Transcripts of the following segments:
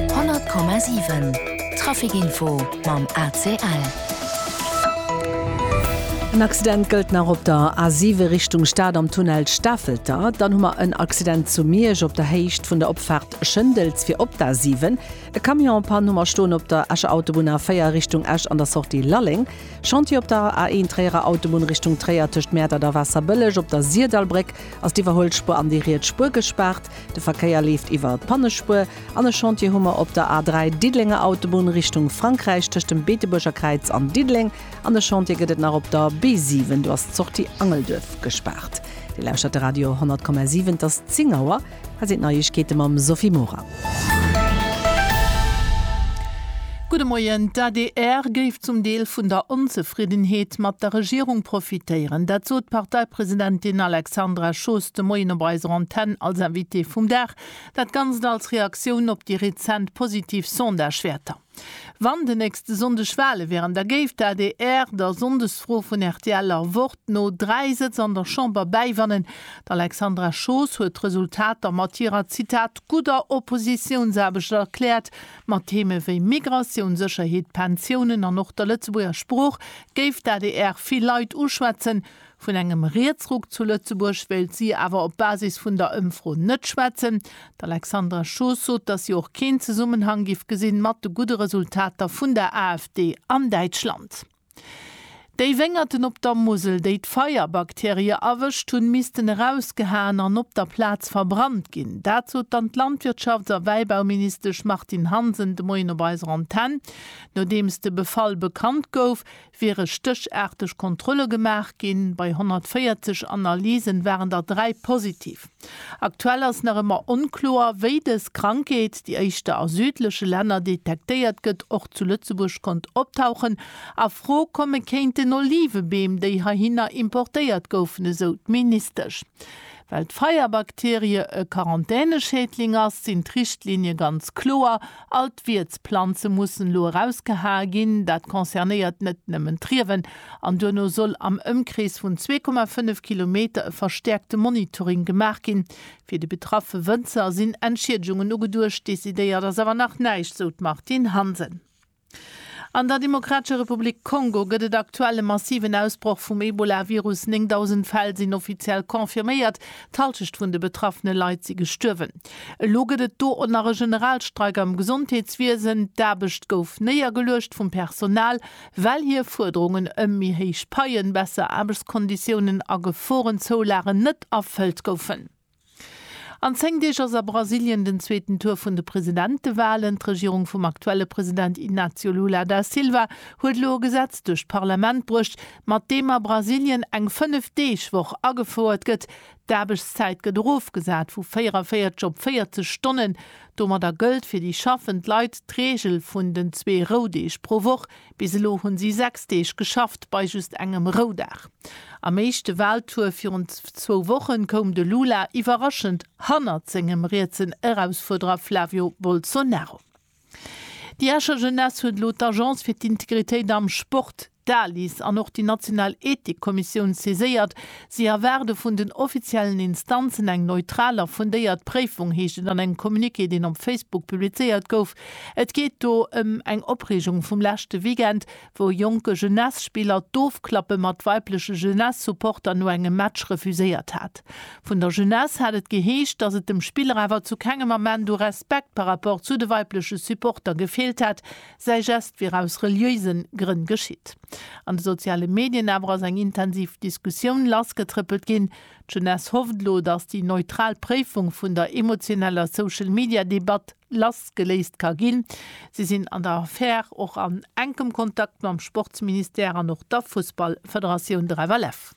100,7 Traficinfo mam ACL. En Accident gëllt nach op der A7 Richtung Stad am Tunnel Stafelter. Dann hu mer en Accident zu Miersch op der Héicht vun der Opfaart Schëndels fir op d'A7. E Camion en Panne hu mer stoen op der Escher Autobunn A4 Richtung Esch an der Sortie Lalleng. Chantier op der A1 Tréierer Autobunn Richtung Tréier tëscht Mäertert a Waasserbëlleg. Op der Sirdalbréck ass d'Iwwerhuelspuer an déi riets Spuer gespaart. De Verkéier leeft iwwer d'Pannespuer an e Chantier hu mer op der A 3, Diddelenger Autobunn Richtung Frankräich, tëscht dem Beetebuerger Kräiz an Diddeleng. An e Chantier gëtt et nach op der B 7, do ass d'Sortie Angelduerf gespaart. Dir lauschtert de Radio 10,7, et ass 10 Auer. Hei sinn d'Neiegkeete mam Sophie Mora. Gudde Moien. D'adr géif zum Deel vun der Onzefriddenheet mat der Regierung profitéieren. Dat sot d'Parteipresidentin Alexandra Schoos de Moien op eiser Antenn als Invitée vum Dag. Dat Ganzt als Reaktioun op déi rezent positiv Sondagewäerter. Wann de nächste Sonndeg Wale wären, da géif d'ADR der Sonndesfro vun RTLer Wort no dräi Sëtz an der Chamber bäiwannen. D'Alexandra Schoos huet d'Resultater mat hirer, Zitat, gudder Oppositiounsaarbecht erkläert. Mat Theeme wéi Migratioun, Sécherheet, Pensiounen an och der Lëtzebuerger Sprooch géif d'ADR vill Leit uschwätzen. Vun engem Rietsruck zu Lëtzebuerg wéilt si awer op Basis vun der Ëmfro net schwätzen. D'Alexandra Schoos sot, datt si och keen Zesummenhang giff gesinn mat de gudde Resultater vun der AfD an Däitschland. Déi Wéngerten op der Musel, déi d'Feierbakterie erwëscht hunn, missten erausgehaen an op der Plaz verbrannt ginn. Dat sot dann d'Landwirtschafts a Wäibauministesch Martine Hansen de Moien op eiser Antenn. Nodeems de Befall bekannt gouf, wiere stéchaarteg Kontrolle gemaach ginn. Bei 140 Analysen waren der dräi positiv. Aktuell ass nach ëmmer onkloer, wéi dës Krankheet, déi éischter a südleche Länner detektéiert gëtt, och zu Lëtzebuerg konnt optauchen a Fro komme kéint. Den Olivebeem, déi heihinner importéiert goufen, esou d'Ministesch. Well d'Feierbakterie e Quarantäneschädling ass, sinn d'Richtlinie ganz kloer, All d'Wiertsplanze mussen elo erausgehae ginn. Dat concernéiert net nëmmen d'Riewen. An duerno soll am Ëmkrees vun 2,5 Kilometer e verstäerkte Monitoring gemaach ginn. Fir déi betraffe Wënzer sinn Entschiedegungen ugeduecht. Decidéiert ass awer nach näischt, sou d'Martine Hansen. An der Demokratescher Republik Kongo gëtt et aktuell e massiven Ausbroch vum Ebola-Virus. 9.000 Fäll sinn offiziell confirméiert. D'Hallschecht vun de betraffene Leit si gestuerwen. Elo gëtt et do och nach e Generalstreik am Gesondheetswiesen. D'Aarbecht gouf néiergeluecht vum Personal, well hir Fuerderungen ëm méi héich Paien, besser Aarbechtskonditiounen a Geforenzoulagen net erfëllt goufen. An 10 Deeg ass a Brasilien den zweeten Tour vun de Presidentewalen. D'Regierung vum aktuelle President Inácio Lula da Silva huet elo e Gesetz duerch d'Parlament bruecht, mat deem a Brasilien eng 5 Deeg Woch agefouert gëtt, d'Aarbechtszäit gëtt erofgesat vu 44 op 40 Stonnen. Domadder gëllt fir déi schaffend Leit d'Reegel vun den zwee Roudeeg pro Woch. Bis elo hunn si 6 Deeg geschafft bei just engem Roudag. Am éischte Waltour virun zwou Woche koum de Lula iwwerraschend hannert sengem rietsen Erausfuerderer Flavio Bolsonaro. Déi Escher Jeunesse huet elo d'Agence fir d'Integritéit am Sport, d'ALIS, an och déi national Ethikkommissioun saiséiert. Si erwaarde vun den offiziellen Instanzen eng neutral a fundéiert Préifung, heescht et an engem Communiqué, deen op Facebook publizéiert gouf. Et geet do ëm eng Opreegung vum leschte Weekend, wou jonke Jeunesse-Spiller d'Ofklappe mat weibleche Jeunesse-Supporter no engem Match refuséiert hat. Vun der Jeunesse hat et geheescht, dass et dem Spiller awer zu kengem Ament u Respekt par rapport zu de weibleche Supporter gefeelt hätt, säi Geste wier aus reliéisen Grënn geschitt. An de soziale Medien awer ass eng intensiv Diskussioun lassgetrëppelt ginn. D'Jeunesse hofft elo, dass déi neutral Préifung vun der emotioneller Social-Media-Debatt, lassgeléist ka ginn. Si sinn an der Affär och an enkem Kontakt mam Sportsministère an och der Fussballfederatioun, der FLF.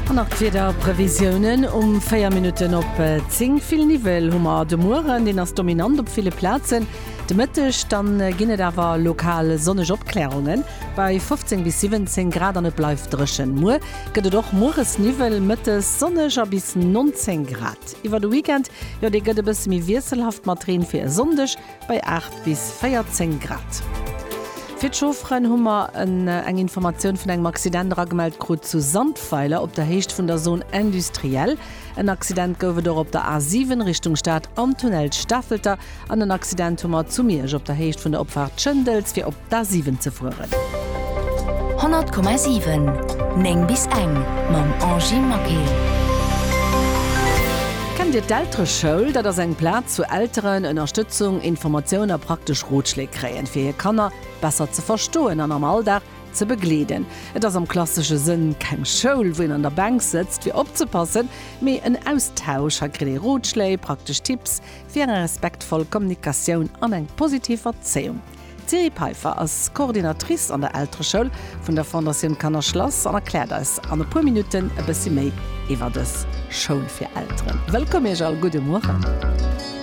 An nach d'Wiederprevisiounen um 4 Minutten op 10, Vill Niwwel hu mer de Mueren, deen ass dominant op ville Plazen. De Mëtteg dann ginn et awer lokal sonneg Opkläerungen. Bei 15 bis 17 Grad an et bleift dréchen. Muer gëtt et och mueres Niwwel, mëttes sonneg a bis 19 Grad. Iwwer de Weekend, jo dee gëtt e bësse méi wiesselhaft mat Reen fir e Sonndeg bei 8 bis 14 Grad. Fir d'Chaufferen hu mer eng Informatioun vun engem Accident eragemellt krut zu Sandweiler op der Héicht vun der Zone industrielle. En Accident gouf et och op der A7 Richtung Stad am Tunnel Stafelter an en Accident hu mer zu Miersch op der Héicht vun der Opfaart Schëndels fir op D'A7 ze fueren. 100,7 9 bis eng mam Angie Maquet. Kennt Dir d'Eltereschoul? Dat ass eng Plaz wou Elteren Ënnerstëtzung, Informatioun a praktesch Rotschléi kréien, fir hir Kanner besser ze verstoen an am Alldag ze begleeden. Et ass am klassesche Sënn keng Schoul, wou een an der Bänk sëtzt fir opzepassen, mee en Austausch. Hei kritt ee Rotschléi, praktesch Tipps fir eng respektvoll Kommunikatioun an eng positiv Erzéiung. D'Thierry Peiffer ass Coordinatrice an der Eltereschoul vun der Fondatioun Kanner Schlass an erkläert eis an e puer Minutten e bëssi méi iwwer dës Schoul fir Elteren. Wëllkomm Iech all, gudde Mueren.